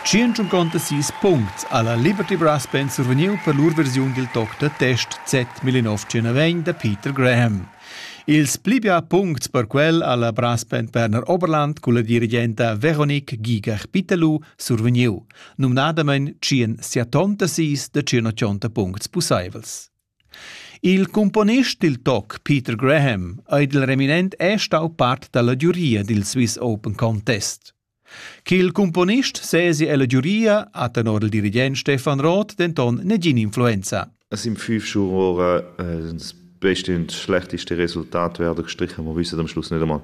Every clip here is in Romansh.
Tschient sis puncts ha la Liberty Brass Band survegniu per lur versiun dil toc da test Z1901 da Peter Graham. Ils pli bia puncts per quel ha la brass band Berner Oberland culla dirigenta Veronique Gigach-Pitterlou survegniu, numnadamein tschien siatonta sis da tschient puncts pusseivels. Il cumponist dil toc Peter Graham ei dil reminent è stau part dalla giuria dil Swiss Open Contest. Ch'il cumponist sesi ella giuria ha tenor il dirigent Stefan Roth denton negin influenza. Es im fünf Schuhe ora, äh, das beste und schlechteste Resultat werden gestrichen. Wir wissen am Schluss nicht einmal,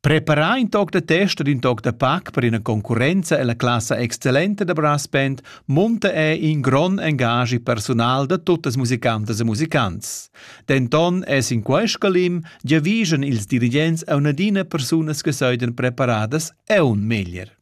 Preparà in toc da test ed in toc da pac per ina concurrenza ella classa excellenta da brass band munta ei in grond engaschi persunal da tuttas musicantas e musicants. Denton è sin quest scalim giavischan ils dirigents a un'adina persunas che soidan preparadas aun meglier.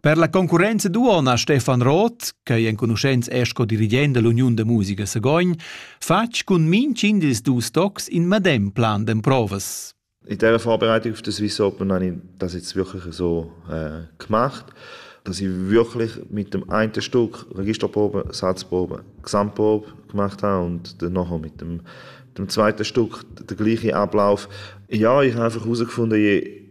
Per la concurrenza duonna Stefan Roth, ch'ei enconuschents è sco dirigent dall'Uniun da musica Sagogn, fatg cun minchin dils dus tocs in medem plan d'emprovas. In dieser Vorbereitung auf das Viso Open habe ich das jetzt wirklich so äh, gemacht, dass ich wirklich mit dem einen Stück Registerprobe, Satzprobe, Gesamtprobe gemacht habe und dann nachher mit dem, dem zweiten Stück den gleichen Ablauf. Ja, ich habe einfach herausgefunden, je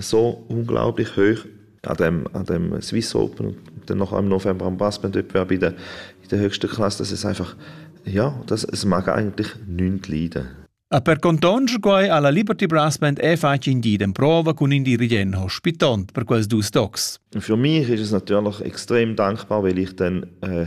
so unglaublich hoch an dem an dem Swiss Open und dann noch im November am Basketballwettbewerb in der in der höchsten Klasse das ist einfach ja das es mag eigentlich nichts leiden A per contonscher quai ha la Liberty Brass Band e fatg in di den prova cun in dirigent hospitont per quels dus docs. Für mich ist es natürlich extrem dankbar, weil ich dann äh,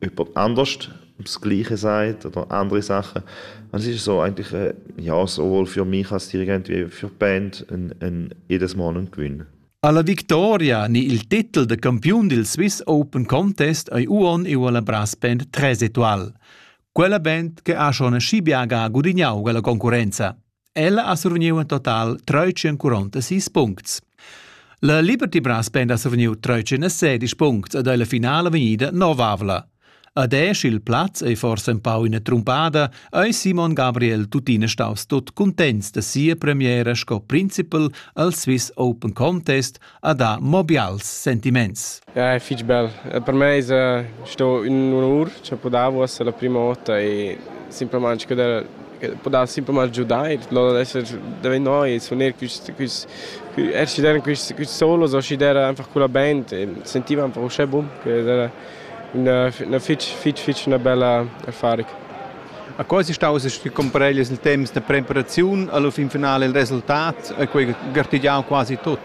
jemand anders das Gleiche sagt oder andere Sachen. Und es ist so eigentlich, äh, ja, sowohl für mich als Dirigent wie für die Band ein, ein jedes Mal ein Gewinn. Alla victoria ni il titel de campiun del Swiss Open Contest ei uon e la brass band Tresetoal. Quella band che ha schon scibiaga gudignau la concurenza. Ella ha survgniu in total treutschenquaronta sis puncts. La Liberty Brass Band ha survgniu treutschenasedisch puncts ed ei la finala vegnida novavla. Ad esch il plaz ei forsa empau ina trumpada, ei Simon Gabriel tuttina staus tut cuntents da sia premiera sco principal al Swiss Open Contest a dar mo bials sentiments. Ja, è fitg bel. Per me es sto ün onur cha podavo esser la prima vota e simplamaing che der podava simplamaing giudar e loro adesso deve noi suoner quist quist er sci der quist quist solo so sci der einfach con la band e sentiva einfach uschè bun che era na fich fich fich 'na bella affari. A quai si staus a compareglias il temps da preparaziun alla fin finale il resultat a quei gartigiau quasi tut.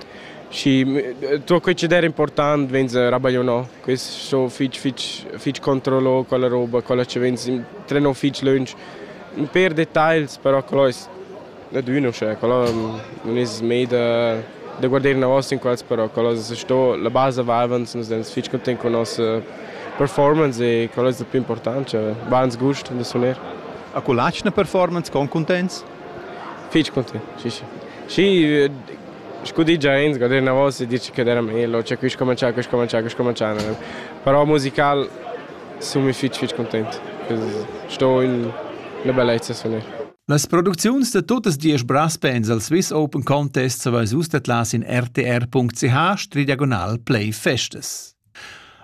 Și tot quei ce der important vegn rabagliu no. Quist so fich fich fich controllo con la roba, con la ce vegn trenò fich lönch. Un per detagls, però quello es da dunna, uschè quella non es mai da da guarder inavant in quels, però quella es sto la basa vavans, nus ins fich content con nossa performance e quella es la plü important, cioè bans gust da suner. A cu latschna performance con cuntents? Fich content, sì sì. Sì, scu di James, guarder inavant e dirci che era meglio, cioè quis comincià, quis comincià, quis comincià, però musical sun fich fich content, sto in 'na bellezza suner. Las producziuns da tuttas diesch braspens al Swiss Open Contest savais vus dat las in rtr.ch play festas.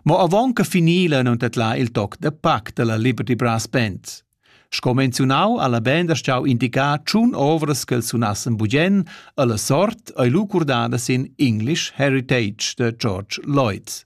Ma avant che finila non dat la il toc da pac della Liberty Brass Band. Sco menziunau alla band ha stau indicar tschun ovras che els sunassen bugen alla sort ei lucurdada sin English Heritage de George Lloyd.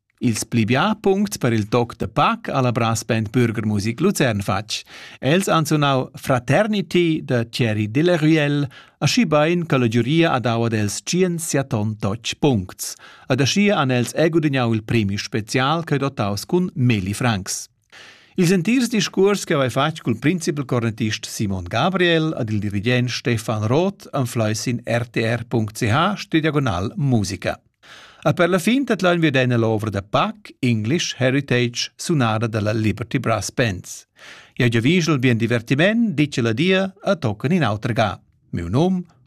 Ils pli bia puncts per il toc da pac ha la brass band Bürgermusik Luzern fatg. Els han sunau Fraternity da Thierry Delaruelle, aschi bein che la giuria ha dau ad els tschien siaton totg puncts. Ad aschia han els egudignau il premi special ch'ei dotaus cun Meli Franks. Ils entirs discuors che haveva fatg cul principal cornettist Simon Gabriel ad il dirigent Stefan Roth anflai sin rtr.ch sü diagonal musica. A per la fin tadlaun wir d'eina l'ovra da Pac English Heritage sunada dalla Liberty Brass Bands. Ja giavigel bien divertiment, dice la dia, a tocan in auter ga. Miu num